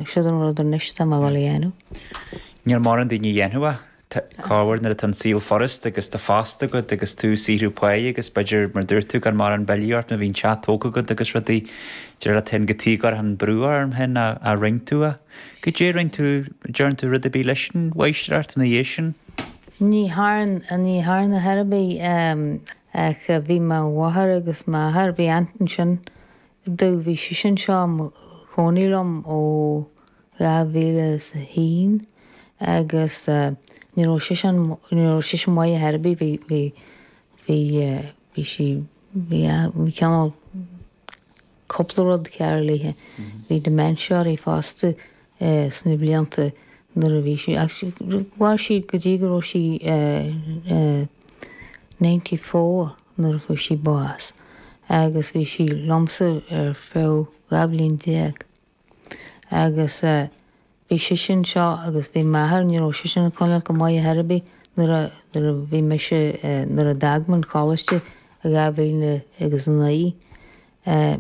Ach siúd an rud anois atá mé ag dul a dhéanamh. Níl mórán daoine a dhéanfadh é. Corruair nuair atá an saol furast agus tá post agat agus tú ag saothrú pá agus b'fhéidir, mar a dúirt tú, gan mórán billí ort nó bíonn teach tógtha agat agus rudaí, dar leat féin go dtí gur tháinig brú orm féin a rinn tú é. Goidé rinn tú, dtearn tú rud ar bith leis an mháistreacht ina dhiaidh sin? Ní thearn, ní thearn ar chor ar bith ach bhí mo mháthair agus m'athair, bhí aunt ansin, Rud a bhí sise anseo ina cónaí liom ó 2001 agus ní raibh seisean, ní raibh sise maith ar chor ar bith, bhí, bhí, bhí, bhí sí, bhí, bhí cineál cúpla rud cearr léithe. Bhí dementia uirthi fosta sna blianta nuair a bhí sí, mhair sí go dtí go raibh sí ninety four. nuair a fuair sí bás, agus bhí sí liomsa ar feadh dhá bhliain déag. Agus bhí sise anseo agus bhí m'athair, ní raibh seisean ag coinneáilt go maith ar chor ar bith nuair a, nuair a bhí mise, nuair a d'fhág muid an coláiste i dhá mhíle agus a naoi eh,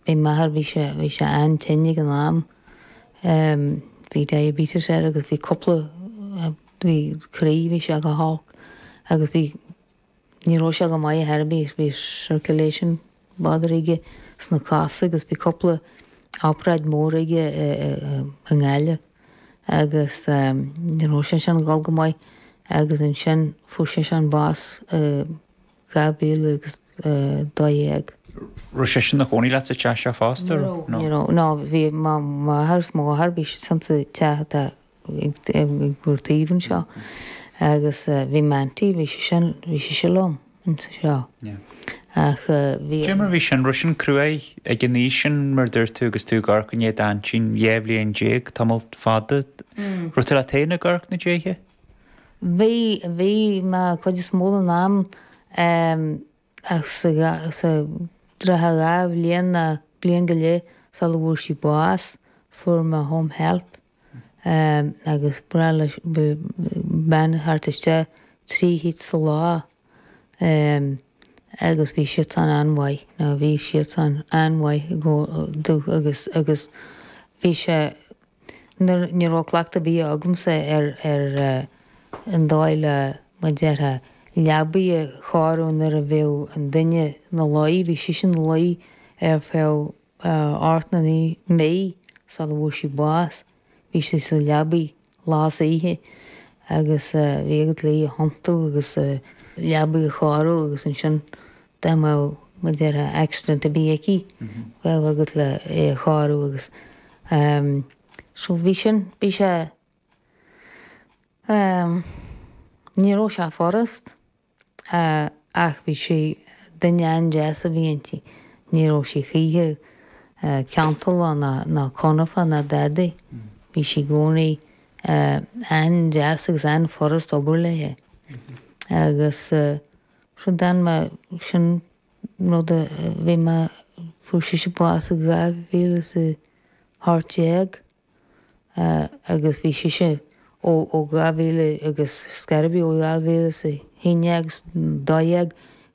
bhí m'athair, bhí sé, bhí sé an-tinn ag an am, em, bhí diabetes air agus bhí cúpla, bhí croí, bhí sé go holc agus bhí, Ní raibh sé go maith ar chor ar bith, bhí circulation bother aige sna cosa agus bhí cúpla obráid mór aige i nGaillimh agus ní raibh sé sin ag dul go maith agus ansin fuair seisean bás i 2012. Raibh seisean ina chónaí leat sa teach seo fosta? Ní raibh, ní raibh, ná bhí mo mháthair is m'athair, bhí siadsan sa teach atá ag ár dtaobh anseo agus bhí m'aintín, bhí sise, bhí sise liom anseo ach bhí. Cé mar bhí sin, raibh sin cruaidh ag an aois sin mar a dúirt tú agus tú ag amharc i ndiaidh d'aintín, dhá bhliain déag, tamall fada. Raibh tú leat féin ag amharc ina diaidh? Bhí, bhí mé cuid is mó den am ach sa, sa trátha dhá bhliain ná bliain go leith sula bhfuair sí bás, fuair mé home help. agus ba ghnách le bean a theacht isteach trí chuairt sa lá agus bhí siadsan an-mhaith nó bhí siadsan an-mhaith agus agus bhí sé nuair ní raibh cleachtadh ar bith agamsa ar ar an dóigh le mar déarfá leabaidh a chóiriú nuair a bheadh an duine ina luí bhí sise ina luí ar feadh Ocht nó naoi mí sula bhfuair sí bás, bhí sí sa leabaidh lá is oíche agus bhí agat le í a thiontú agus a leabaidh a chóiriú agus ansin dá mbeadh, mar a déarfá, accident a bheith aici, bheadh agat le í a chóiriú agus ehm, so bhí sin, bhí sé ehm, ní raibh sé furast. ach bhí sí, duine an-deas a bhí inti, ní raibh sí choíche cantalach ná confach ná dadaí. Bhí sí i gcónaí an-deas agus an-fhurast obair léithe. Agus sin d'fhan mé, sin an rud a bhí mé, fuair sise bás i 2018. agus bhí sise ó dhá mhíle agus scaradh ó dhá mhíle is a haon is dó dhéag,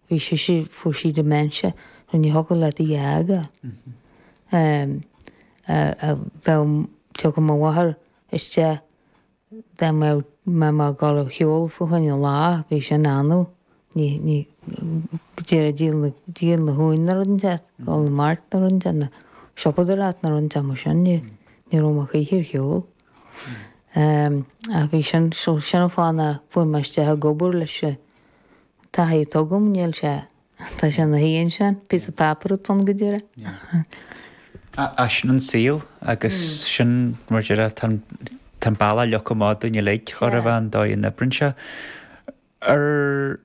bhí sise, fuair sí dementia agus ní thiocfadh leat í a fhágáil. Bheadh, tiocfadh mo mháthair isteach, dá mbeadh mé ag gabháil ar shiúl fá choinne an lá bhí sin annamh, ní, ní, go díreach díol na, díol na huain nó rud inteacht, gabháil 'na mart nó rud inteacht nó siopadóireacht nó rud inteacht mar sin, ní, ní raibh mé choíche ar shiúl. Ach bhí sin, so, sin an fáth a fuair mé isteach ag obair leis an taithí, tuigim, níl sé. Tá sé 'na, níl ann ach, píosa páipéar atá ann go díreach. Is sin an saol agus sin mar a déarfá an bealach le achan duine againn uilig cor a bheith an dóigh a n-oibríonn sé. Ar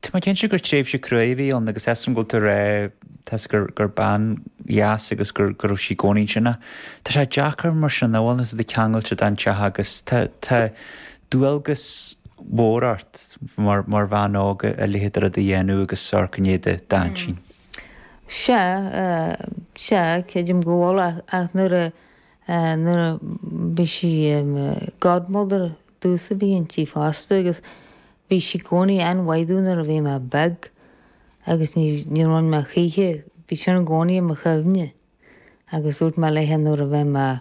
Tá mé cinnte gur tréimhse cruaidh a bhí ann agus is iontach an rud é a rá is gur gur bean dheas agus gur go raibh sí gcónaí sin Tá sé deacair mar sin a bheith, tá tú ceangailte don teach agus tá dualgas mhór ort mar bhean óg a leithéid de rud a dhéanamh agus ar son cinnte d'aintín. Sea, sea, creidim go bhfuil ach nuair a, nuair a bhí sí godmother domhsa a bhí inti fosta agus bhí sí gcónaí an-mhaith domh nuair a bhí mé beag agus ní, ní rinn mé choíche, bhí sin i gcónaí i mo chuimhne agus dúirt mé léithe nuair a bheidh mé